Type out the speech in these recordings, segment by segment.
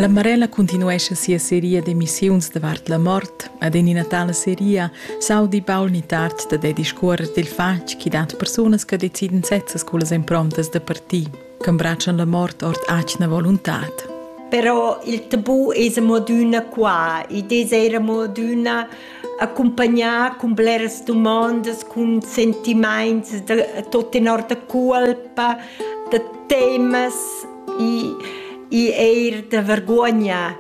La Marella continuescha sia seria d'emissiuns davart la mort ed en ina tala seria s'audi Paul Nittart da der discuorrer dil fatg chi dat persunas che deciden sezzas cullas improntas da parti, che imbraccian la mort ord atgna voluntad. Però il tabù es amo adüna qua. Id es eir amo adüna accumpagnar cun bleras dumondas, cun sentimaints da tot tenor da colpa, da temas e, e eir da vergogna.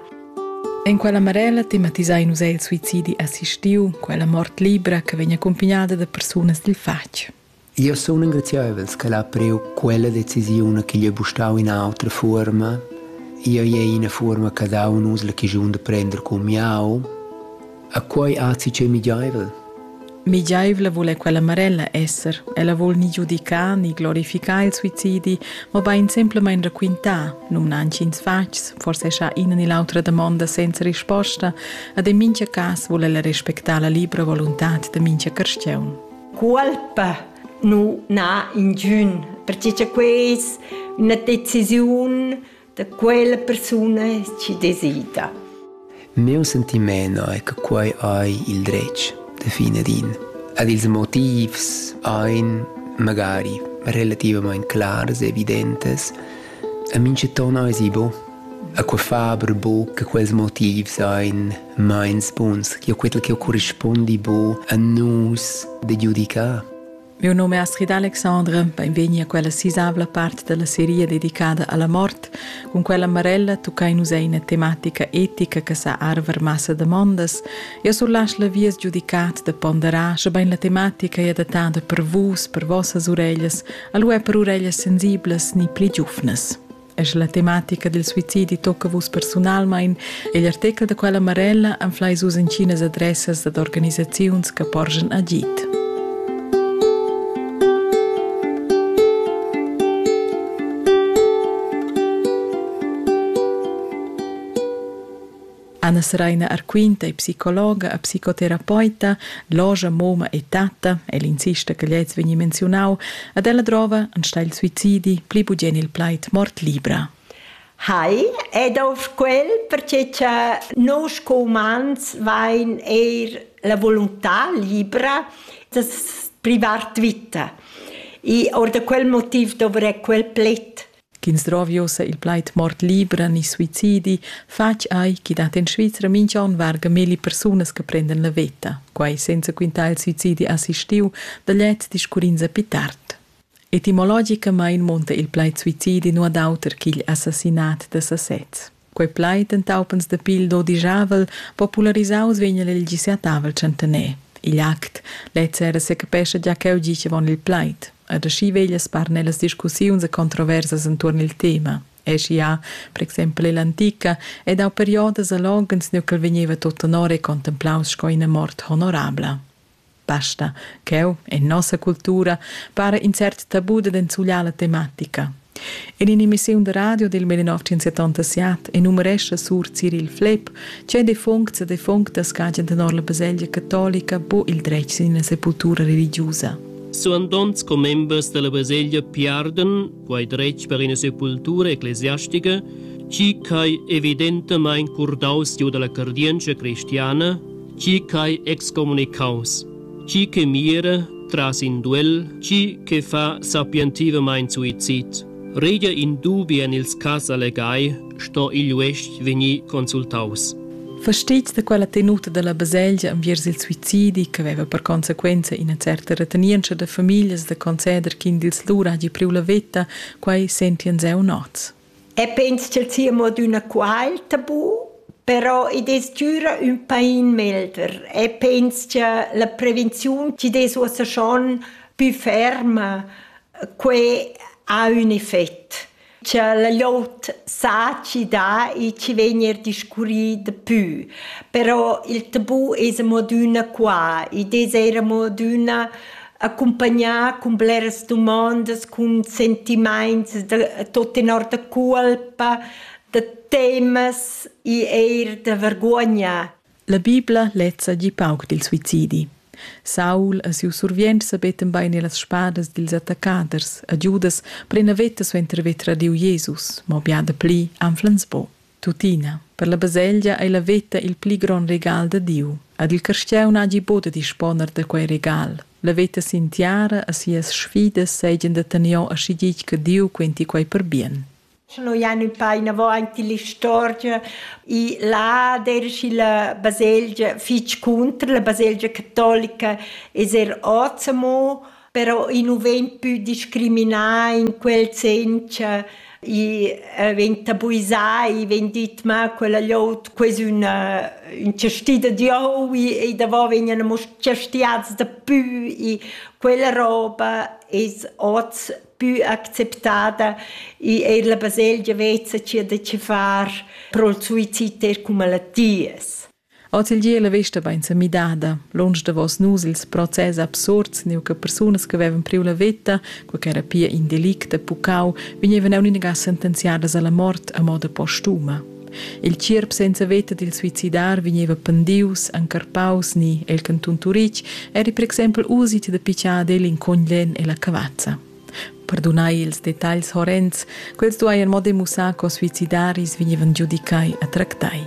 En quella Marella tematisai nus il suicidi assistiu, quella mort libra che vegn accompagnada da persunas dil fatg. Jeu sun engrazieivels che l'ha priu quella decisiun ch'igl ei bustau ina autra fuorma. Jeu ei ina fuorma che dau nus la chischun da prender cun miau. E quei azzi ch'ei migiaivel. Migiaivla vul è quella Marella esser. Ella vul ni giudicar ni glorificar il suicidi, mobein semplamein raquintar, numna intgins fatgs, forse scha ina ni l'autra damonda senza risposta, ad en mintga cas vul ella respectar la libra voluntad de mintga carstiaun. Cuolpa nu n'ha ingün, perche cha queis üna decisiun da quella persuna chi desida. Mieu sentimaint è che quai ei il dretg da fine din. Ed ils motivs ein magari relativament clars e evidentes. A minchaton ais i bo. A que fa aber bo che quels motivs ein meins buns che quel che corrispondi bu a nus de giudicar. Mio nome è Astrid Alexandre, benvegni a quella sisavla parte della serie dedicata alla morte, con quella Marella toccai nus eine tematica etica che sa arver massa demandas e surlasch la vies giudicat de ponderar sche bein la tematica è adattata per vus, per vossas ureglias, alu è per ureglias sensiblas ni pli giufnas. Es la tematica del suicidi tocca vus personalmein egl artechel da quella Marella anflai sus incinas adressas dad organisaziuns che porgen agit. Anna Seraina Arquinta è psicologa e psicoterapeuta, loja, moma e tatta, el insista che gliez vegni menziunau, ed ella drova enstagl suicidi pli bugien il plaid mort libra. Hai, ed auf quel, perché cha nus co umans vain eir la volontà libra das privart vita. I or da quel motiv dovrei quel pled. ch'ins drovi ussa il plaid mort libra ni suicidi, fatg ei ch'i dat en Svizra mintg'onn varga milli persunas che prendan la veta, quai senza quintar il suicidi assistiu da gliez discurrins a pi tard. Etimologicamain munta il plaid suicidi nu ad auter ch'igl assassinat da sasez. Quei plaid entaupens da pil dodijavel popularisaus vegn el il gisiatavel tschentener. Igl act lez era secapescha gia cheu gicevon il plaid. Ed aschi veglia spar nellas discussiuns e controversas entuorn il tema. Eschi ha, per exempel ell'antica, ed dau periodas a loghens nu ch'el vegneva tot tenor e contemplaus sco ina mort honorabla. Basta ch'eu e nossa cultura para in cert tabu da enzugliar la tematica. In in'emissiun da radio del 1977 enumerescha Sur Cyril Flepp, che defuncts e defunctas cagen tenor la baselgia catolica bo il dretg sin la sepultura religiusa. Suandonts commembers della baselgia piarden quai dretg per ina sepultura ecclesiastica, chi ch'ai evidentamain curdaus giu dalla cardientscha cristiana, chi ch'ai excomunicaus, chi che mira tras in duel, chi che fa sapientivamain suicid. Regia in dubi en ils cas allegai sto igl uestg vegnir consultaus. Fastizs da quella tenuta dalla baselgia enviers il suicidi che veva per consequenza ina certa retenientscha da famiglias da conceder ch'in dils lur hagi priu la veta, quei sentien zeu nots. E pens ch'el sia mo d'una qual tabu, però i des gira un pain melder e pens che la prevenziun ci des uossa schon più ferma, que ha un effett. cha la glot saci dà e chi vegn eir discurrì dapü. Però il tabù es amo adüna qua ed es eir amo adüna accumpagnà cun bleras dumandas, cun sentimaints da tot tenor da culpa, da temas e eir da vergogna. La Bibla lezza gi pauc dil suicidi. Saul e siu survient sabetten bein e las spadas dils attaccaders a Giudas plena veta suenter haver tradiu Jesus, mo bia dapli anflans po. Tuttina, per la baselgia ei la veta il pli gron regal da Diu. Ad il carstieu n'hagi bod da disponer da quei regal. La veta sin tiara e sias sfidas seigien da tenor aschi ditg che Diu quenti quei per bien. Sche noi ein ün pa inavant illa istorgia, i là dersch illa baselgia fich cunter, la baselgia catolica es er hoz amo, però i nu vegn pü discriminà in quel sen cha i vegn tabuisà, i vegn dit ma quella llot quo es üna ün chastì da Dieu, i i davò vegnan amo chastiats dapü, i quella roba es hoz più acceptada e è la baselgia vezza c'è da ci far pro il suicid er cum malattias. Ozeldie la vesta bain sa midada. Lunsch davos nus ils process absurds, neu che persunas che avevan priu la veta, co che era pia in delict da pucau, vegnevan aunc inaga sentenziadas alla mort a moda postuma. Il tgierp senza veta dil suicidar vegneva pendius, encarpaus ni el cantun Turitg eri per exempel usit da pitschar el in coglen e la cavazza. Perdunai ils detagls horrends, quels duai en mo demussar co suicidaris vegnevan giudicai a tractai.